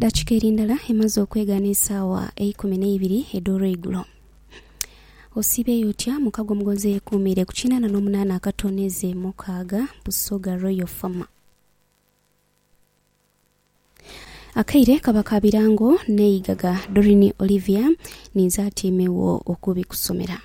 Dakika eri ndala emaze okwegana esaawa eikumi n'eibiri edh'olweigulo. Osiibeeyo otya mukago omugonzi eyekuumiire ku kinaana n'omunaana akatooneze mukaaga, Busoga Royal Farm. Akaire kaba ka birango n'eigaga, Doreen Olivia ninze atyaime wo okubikusomera.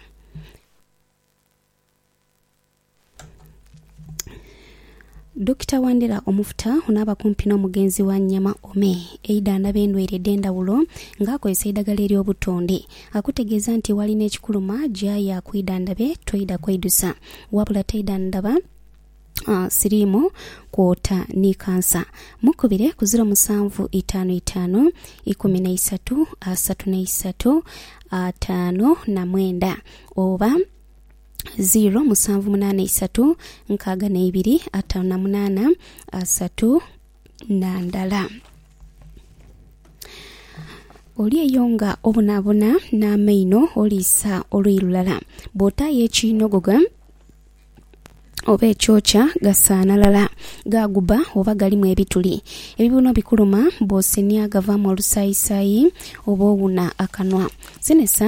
Dokita Wandera Omufuta onaaba kumpi n'omugenzi wa Nyama Ome eidhandhaba endwaire edh'endhawulo nga akozesa eidhagala ery'obutonde akutegeeza nti walina ekikuluma gyayo akwidhandhabe toidha kweidusa wabula taidhandhaba uh, siriimu kwota ni kansa mukubire ku ziro musanvu itaanu itaanu ikumi na isatu asatu na isatu ataano na mwenda oba 0 musanvu munaana isatu nkaaga neibiri ataanu na munaana asatu na ndala. Oli eyo nga obonabona n'amaino oliisa oluyi lulala, bw'otaayo ekiinogoga oba ekyokya gasaanalala, gaaguba oba galimu ebituli. Ebibuno bikuluma bw'osenhya gavaamu olusaayisaayi oba owuna akanwa. Senhesa.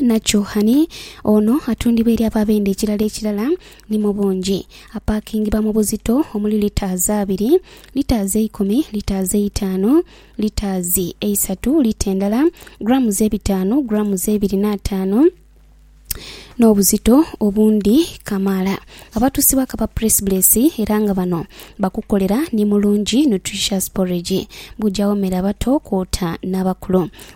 na Chouhani, ono atundibwa eri abo abenda ekilala ekilala ni mu bungi. Apaakingibwa mu buzito omuli litres abiri, litres eikumi, litres eitaanu, litres eisatu, lita endala, grams ebitaanu, grams ebiri n'ataanu, n'obuzito obundi kamaala. Abatuusibwa kaba Presbyles era nga bano bakukolera ni Mulungi Nutritious Porridge, bujawo mere abato kwota n'abakulu.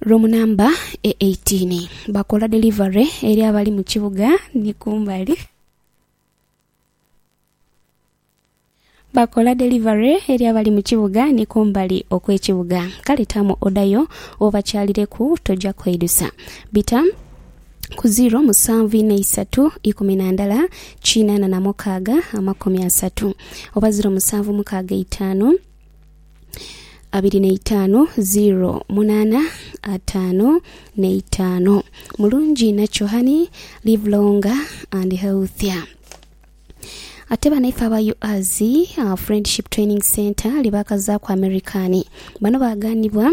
Ruumu namba e 18. Bakola delivery eri abali mu kibuga ni kumbali. Bakola delivery eri abali mu kibuga ni kumbali okw'ekibuga. Kale taamu oda yo obakyalireku toja kweidusa. Bita ku 0 musanvu ina isatu ikumi na ndala kinaana na mukaaga amakumi asatu oba 0 musanvu mukaaga itaanu abiri na itaanu ziro munaana ataano na itaano. Mulungi nakyo honey, live longer and healthier. Ate banaife aba UAZ uh, Friendship Training Center lye baakazaaku Amerikani bano baaganibwa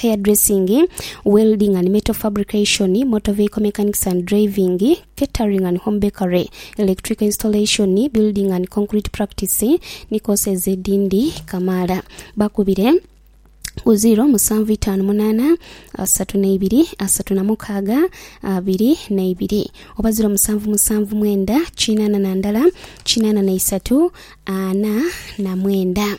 hairdressing, welding and metal fabrication, motor vehicle mechanics and driving, catering and home bakery, electrical installation, building and concrete practice ni courses edhindi kamaala. Bakubire ku ziiro musanvu itaanu munaana asatu neibiri asatu na mukaaga abiri neibiri oba ziiro musanvu musanvu mwenda kinaana na ndala kinaana na isatu ana na mwenda.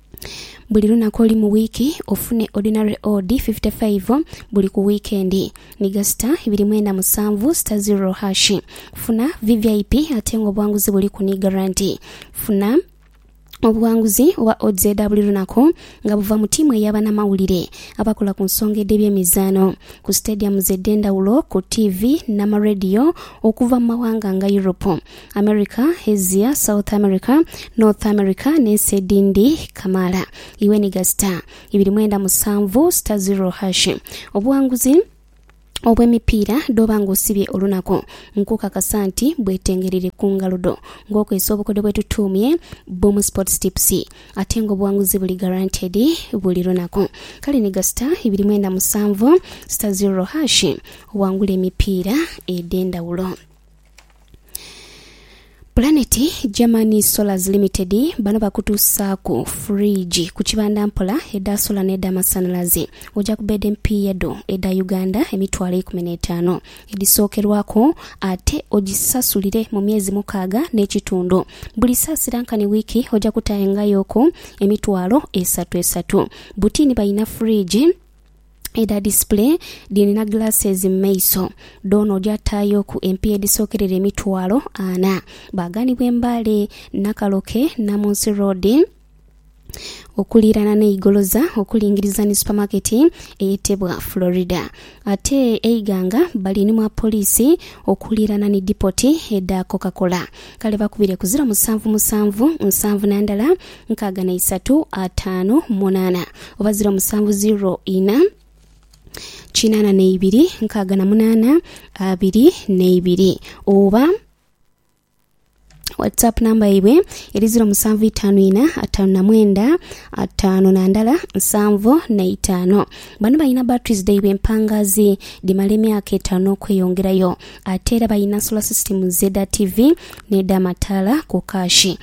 buli lunaku olu mu wiiki ofune ordinary odi fifite faivo buli ku wiikendi ni gasita ibiri mwenda musanvu sita zirro hashi. Funa VVIP ate nga obwanguzi buliku ni garanti. Funa obughanguzi oba odds edha buli lunaku nga buva mu tiimu eya banamawulire abakola ku nsonga edh'ebyemizaano ku sitediyamuzi edh'endhawulo, ku tiivi n'amarediyo okuva mu mawanga nga Europe. America, Asia, South America, North America n'ensi edhindi kamaala. Iwe ni gha sita ibiri mwenda musanvu sita ziro hashi. Obuwanguzi obw'emipiira dh'oba ng'osibye olunaku, nkukakasa nti bwetengereire ku ngalo dho ng'okozesa obukodyo bwe tutuumye Boom Sports Tips. Ate ng'obuwanguzi buli guaranteed buli lunaku. Kale ni gha sita ibiri mwenda musanvu sita ziro hashi owangule emipiira edh'endhawulo. Planet German Solars Limited bano bakutuusaaku fridge ku kibanda mpola edha sola n'edha masanhalaze oja ku beedi empiiya edho edha Uganda emitwalo eikumi n'etaano edhisookerwaku ate ogisasulire mu myezi mukaaga n'ekitundu. Buli saasira nkani wiiki oja kutaayangayoku emitwalo esatu esatu. Butiini balina fridge. edha display dhirina glasses mu maiso, dhoona oja taayoku empiiya edhisokerera emitwalo ana. Baaghanibwa e Mbale, Nakaloke, Namunsi Road okuliirana n'e Igoloza okulingiriza ni supamaketi eyetebwa Florida. Ate e Iganga bali ni mwa poliisi okuliirana ni dipoti edha Coca-Cola. Kale bakubire ku ziro musanvu musanvu nsanvu na ndala nkaaga na isatu ataanu munaana oba ziro musanvu ziro ina kinaana na ibiri nkaaga na munaana abiri na ibiri oba whatsapp namba yaibwe eri ziro musanvu itaanu ina ataanu na mwenda ataanu na ndala nsanvu na itaano bano balina batteries dhaibwe empangazi dhimala emyaka etaano okweyongerayo ate era balina solar systems edha tv n'edha mataala ku kaashi